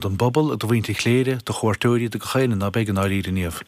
don bpobal, do mhuintir Chléire, do chuairteoirí, do gach aoinne, ab ea, i ndáiríre, a Niamh.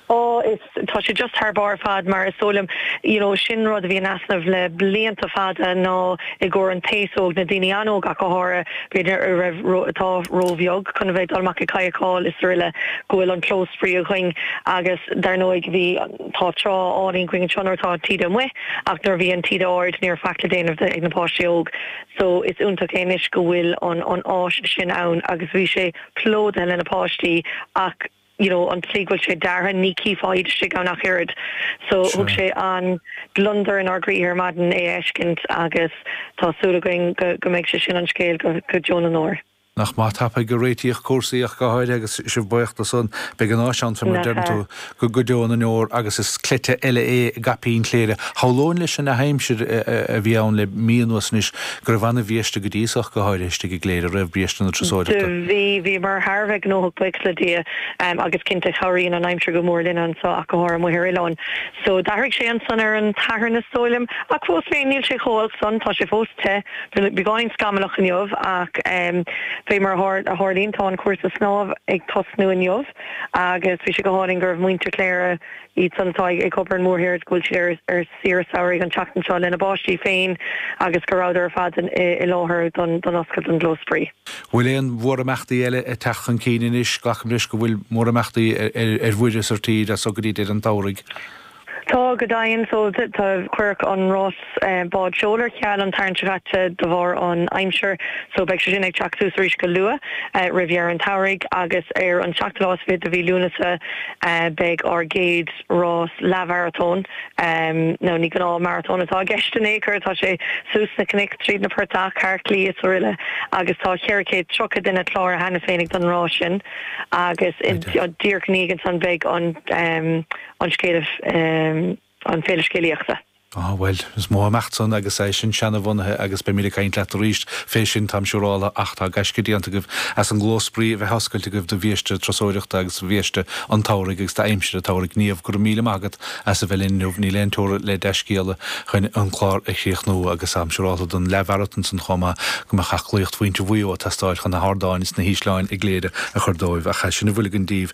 Ó, is, tá sé just thar barr ar fad mar is dóigh liom, you know, sin rud a bhí in easnamh le blianta fada ná i gcomhair an t-aos óg, na daoine an-óg ach go háirithe, b'fhéidir a raibh, atá ró-bheag chun a bheith ag dul amach ag kayakáil is aroile, go bhfuil an clós spraoi againn agus dar ndóigh bhí, tá trá álainn againn anseo nuair atá an taoide amuigh ach nuair a bhí an taoide ard ní raibh faic le déanamh ag na páistí óg. So is iontach é anois go bhfuil an áis sin ann agus bhí sé plódaithe le na páistí ach you know an tslí go bhfuil sé deartha ní chífeá iad istigh ann ach oiread. So thug Sure. sé an-ghliondar inár gcroíthe ar maidin é a fheiscint agus tá súil againn go go mbeidh sé sin an scéal go go deo na ndeor. Nach maith tapaidh a réitíodh cúrsaí ach go háirithe agus sibh baoch do san. Beidh an áis ann, fé mar a deireann tú, go deo na ndeor agus is cleite eile é i gcaipín Chléire. Shamhlóinn leis an an-aimsir a bhí ann le mí anuas anois go raibh an-bhiaiste go dtí so ach go háirithe istigh i gCléire roimh biaiste na turasóireachta. Do bhí, bhíomar thar a bheith gnóthach baoch le Dia agus cinnte chabhraíonn an aimsir go mór linn anso ach go háirithe amuigh ar oileán. So d'athraigh sé ansan ar an tSatharn is dóigh liom ach fós féin níl sé chomh olc san, tá sé fós te. Bhí beagáinín scamallach inniu ach fé mar a tharlaíonn tá an cúrsa snámh ag tosnú inniu agus bhí sé go hálainn go raibh muintir Chléire, iad san atá ag obair ar an mórthír agus go bhfuil siad ar saoire samhraidh an tseachtain seo lena bpáistí féin agus go rabhadar ar fad i láthair don oscailt don gclós spraoi. Bhfuil aon mhórimeachtaí eile ag teacht chun cinn anois? Glacaim leis go bhfuil mórimeachtaí ar mhuir is ar tír as so go dtí deireadh an tsamhraidh? Tá, go deimhin. So, tá, cuireadh an rás bád seoil ar ceal an tSatharn seo caite de bharr an aimsir. So, beidh sé sin ag teacht suas arís go luath, roimh dheireadh an tsamhraidh agus ar an seachtú lá is fiche de mhí Lúnasa beidh ár gcéad rás leathmharatón, nó ní gnáth maratón atá i gceist in aon chor, tá sé suas sna cnoic, tríd na portach, thar claí is aroile agus tá cheithre chéad tríocha duine cláraithe cheana féinig don rás sin agus díreach ina dhiaidh ansan beidh an an scéal an Féile Scéalaíochta. Á, bhuel, is mórimeacht san, agus é sin seana-bhunaithe, agus beimid ag caint leat arís fé sin, táim siúrála, ach tá gaisce déanta agaibh as an gclós spraoi a bheith oscailte agaibh do bhiaiste turasóireachta agus do bhiaiste an tsamhraidh agus d'aimsir an tsamhraidh. Niamh, go raibh míle maith agat as a bheith linn inniu. Níl aon teora le dea-scéala chun an clár a chríochnú, agus táim siúrála don leathmharatón san chomh maith, go mbeadh aclaíocht mhuintir Mhuigh Eo ag teastáil chun na hardáin is na hísleáin i gCléire a chur dóibh, ach sin a bhfuil againn daoibh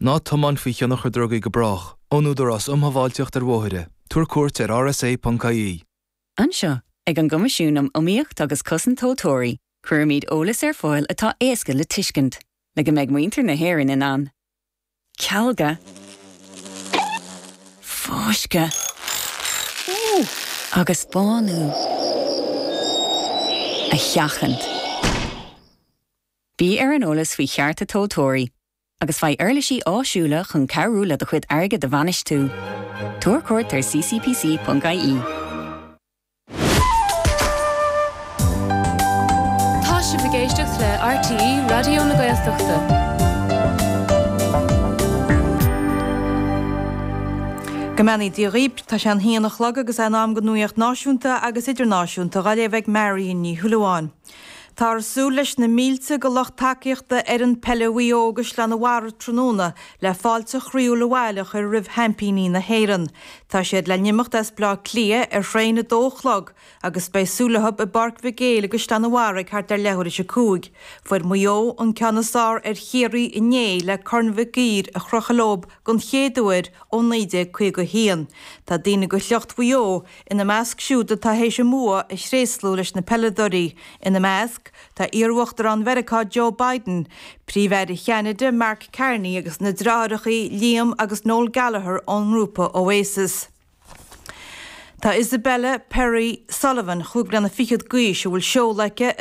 Ná tiomáin faoi thionchar drugaí go brách. Ón Údarás Um Shábháilteacht ar Bhóithre. Tabhair cuairt ar rsa.ie. Anseo, ag an gCoimisiún um Iomaíocht agus Cosaint Tomhaltóirí, cuirimid eolas ar fáil atá éasca le tuiscint, le go mbeidh muintir na hÉireann in ann cealgadh, fáisceadh agus bánú a sheachaint. Bí ar an eolas faoi chearta tomhaltóirí. agus faigh uirlisí áisiúla chun cabhrú le do chuid airgid a bhainistiú. Tabhair cuairt ar ccpc.ie. Tá sibh ag éisteacht le RTÉ Raidió na Gaeltachta. Go mbeannaí Dia dhaoibh, tá sé an haon a chlog agus é in am don nuacht náisiúnta agus idirnáisiúnta á léamh ag Marion Ní Shúilleabháin. Táthar ag súil leis na mílte de lucht tacaíochta fhoireann peile Mhaigh Eo i gCaisleán an Bharraigh tráthnóna le fáilte chroíúil abhaile a chur roimh sheaimpíní na hÉireann. Tá siad le n-imeacht as Bleá Cliath ar thraein ag a dó a chlog agus beidh súil leo i bPáirc Mhic Éil i gCaisleán an Bharraigh ag thart ar leathuair théis a cúig. Fuair Maigh Eo an ceann is fearr ar Chiarraí inné le Corn Mhic Uidhir a chrochadh leo den chéad uair ó 1951. Tá daoine de shliocht Mhaigh Eo Ina measc siúd atá théis a mbua a thréaslú leis na peileadóirí, ina measc, tá iarUachtarán Mheiriceá Joe Biden, Príomh-Aire Cheanada Mark Carney agus na deartháireacha Liam agus Noel Gallagher ón ngrúpa Oasis. Tá Isabella Perri Sullivan, chúig bliana fichead d'aois, a bhfuil seoladh aici